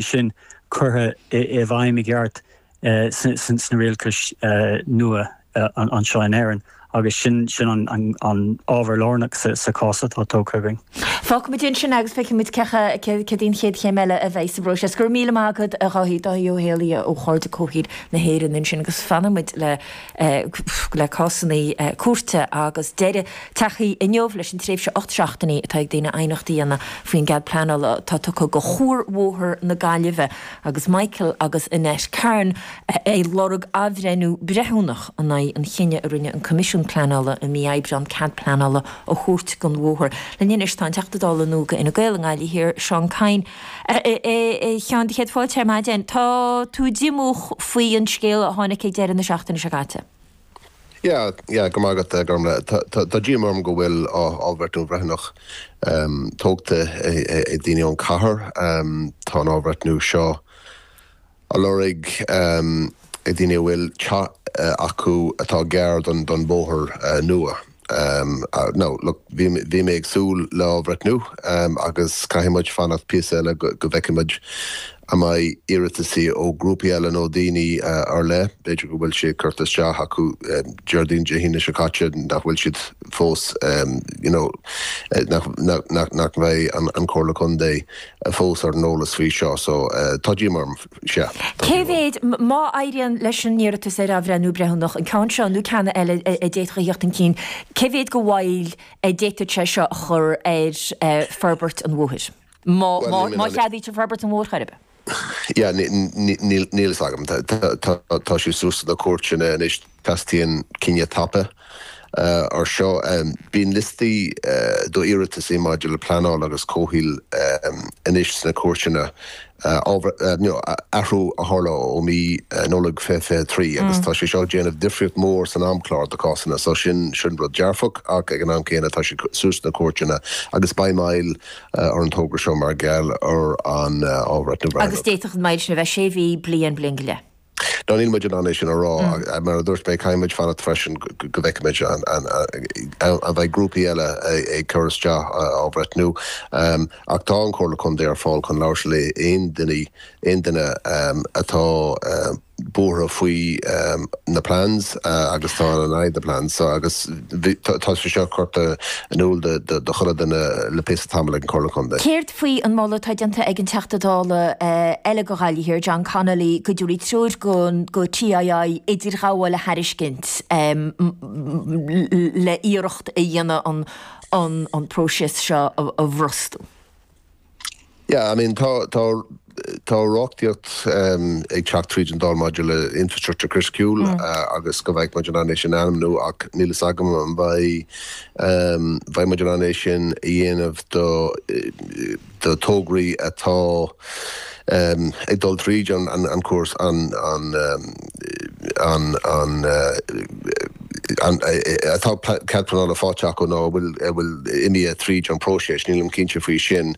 sin curtha i bhfeidhm i gceart sna rialachais nua anseo in Éirinn agus sin an ábhar lárnach sa chás atá tógtha againn. Fágfaidh muid ansin agus feicfidh muid cad é an chéad chéim eile a bheidh sa bpróiseas. Go raibh míle maith agat a Dháithí, Dáithí Ó hÉalaithe ó Chairde Comhshaoil na hÉireann ansin agus fanfaidh muid le le cásanna cúirte agus deireadh tagtha inniu leis an tréimhse ocht seachtainí atá ag daoine aighneacht a dhéanamh faoin gcead pleanála atá tugtha do Chuarbhóthar na Gaillimhe agus Michael agus Annette Kerin ag lorg athbhreithniú breithiúnach in aghaidh an chinnidh a rinne an Coimisiún Pleanála i mí Aibreáin cead pleanála a thabhairt don bhóthar. Linn anois tá an Teachta Dála nua do Fhine Gael i nGaillimh Thiar, Seán Kyne. A Sheáin, do chéad fáilte ar maidin. Tá tú díomách faoin scéal a tháinig ag deireadh na seachtaine seo caite. Yeah, yeah, go raibh maith agat, a Ghormfhlaith. Tá díoma orm go bhfuil athbhreithniú breithiúnach tógtha ag daoine ón cathair. Tá an athbhreithniú seo. á lorg ag daoine a bhfuil teach acu atá gar don bhóthar nua now look, bhí mé ag súil le athbhreithniú agus caithfidh muid fanacht píosa eile go bhfeicfidh muid an mbeidh iarrataisí ó ghrúpaí eile nó daoine ar leith, b'fhéidir go bhfuil sé curtha isteach acu Déardaoin, Dé hAoine seo caite nach bhfuil siad fós you know nach mbeidh an Chomhairle Contae. fós ar an eolas faoi seo so tá díoma orm, sea, tá díoma orm. Cé mhéad, má éiríonn leis an iarratas ar athbhreithniú breithiúnach, an ceann seo nó ceanna eile a d'fhéadfadh a theacht chun cinn, cé mhéad de mhoill a d'fhéadfadh sé seo a chur ar forbairt an bhóthair, má cheadaítear forbairt an bhóthair chor ar bith? Yeah, níl, níl, níl fhios agam. Tá, tá, tá, tá sé suas sna cúirteanna anois. Teastaíonn cinneadh tapa ar seo. Bíonn liostaí d'iarratasaí maidir le pleanáil agus comhshaol anois sna cúirteanna. You know, athrú a tharla ó mí Nollag 2023 agus tá sé seo ag déanamh difríocht mhór san amchlár do chásanna. So sin, sin rud dearfach ach ag an am céanna tá sé suas sna cúirteanna agus beidh moill ar an togra seo mar gheall ar an athbhreithniú. Agus d'fhéadfadh an mhoill sin a bheith sé mhí, bliain, bliain go leith. Ná níl muid in ann é sin a rá. Mar a dúirt mé, caithfidh muid fanacht freisin go bhfeicfimid an mbeidh grúpaí eile ag cur isteach athbhreithniú. Ach tá an Chomhairle Contae ar fáil chun labhairt le haon duine, aon duine atá buartha faoi na plans agus atá in aghaidh na plans seo. Agus tá sé seo curtha in iúl do chuile duine le píosa tamall ag an Chomhairle Contae. faoi an moladh atá déanta ag an Teachta Dála eile do Ghaillimh Thiar, John Connolly, go dtabharfaí treoir do TII idirghabháil a thairiscint le iarracht a dhéanamh an próiseas seo a bhrostú. Yeah, I mean tá, tá, Tá reachtaíocht ag teacht tríd an Dáil maidir le infreastruchtúr criticiúil agus go mbeidh muid in ann é sin a ainmniú ach níl fhios agam an mbeidh muid in ann é sin a dhéanamh do thograí atá ag dul tríd an cúrsa an tá cead pleanála faighte acu nó an bhfuil imithe tríd an bpróiseas. Nílim cinnte faoi sin.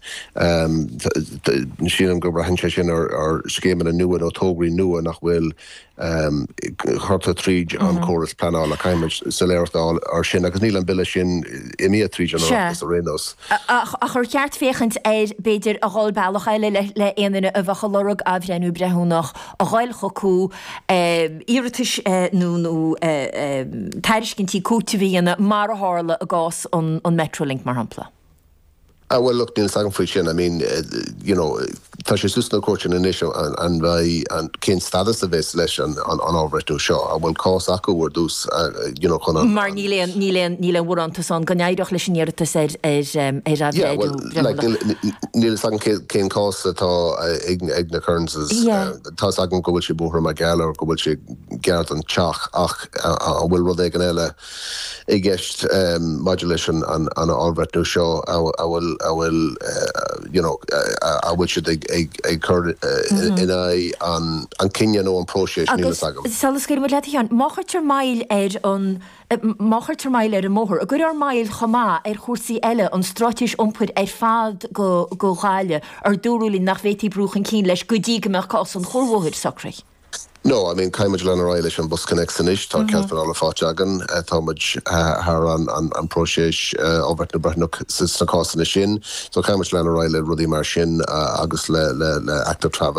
Sílim go mbraitheann sé sin ar scéimeanna nua nó tograí nua nach bhfuil curtha tríd an córas pleanála. Caithfidh muid soiléireacht a fháil air sin agus níl an Bille sin imithe tríd an Oireachtas ar aon nós. Ach ar cheart féachaint air b'fhéidir a dhul bealach eile le aon duine a bheadh ag lorg athbhreithniú breithiúnach? a ghoil chucu, iarratais nó tairiscintí cúitimh a dhéanamh, mar a tharla i gcás an Metrolink, mar shampla. Ah, bhuel, look, níl 's agam faoi sin. I mean, you know, tá sé suas sna cúirteanna anois an bheidh, cén stadas a bheas ag an athbhreithniú seo. An bhfuil cás acu ar dtús, you know, Mar níl aon, níl aon, níl aon bharántas ann go n-éireodh leis an iarratas ar athbhreithniú. breithiúnach. Níl fhios agam cén cás atá ag na Kearns'. Tá fhios agam go bhfuil siad buartha mar gheall ar go bhfuil sé gar don teach ach an bhfuil rud éigin eile i gceist maidir leis an athbhreithniú seo a bhfuil siad ag cur in aghaidh an cinneadh nó an próiseas, níl fhios agam. Agus, sula scaoilimid leat a Sheáin, má chuirtear moill ar an. i. má chuirtear moill ar an mbóthar, an gcuirfear moill chomh maith ar chúrsaí eile, an stráitéis iompair ar fad do Ghaillimh, a dúradh linn nach bhféadfaí brú chun cinn leis go dtí go mbeadh cás an chuarbhóthair socraithe. No, I mean, caithfidh muid lean ar aghaidh leis an BusConnects anois, tá cead pleanála faighte againn, tá muid thar an próiseas athbhreithniú breithiúnach sna cásanna sin, so caithfidh muid lean ar aghaidh le rudaí mar sin agus le active travel.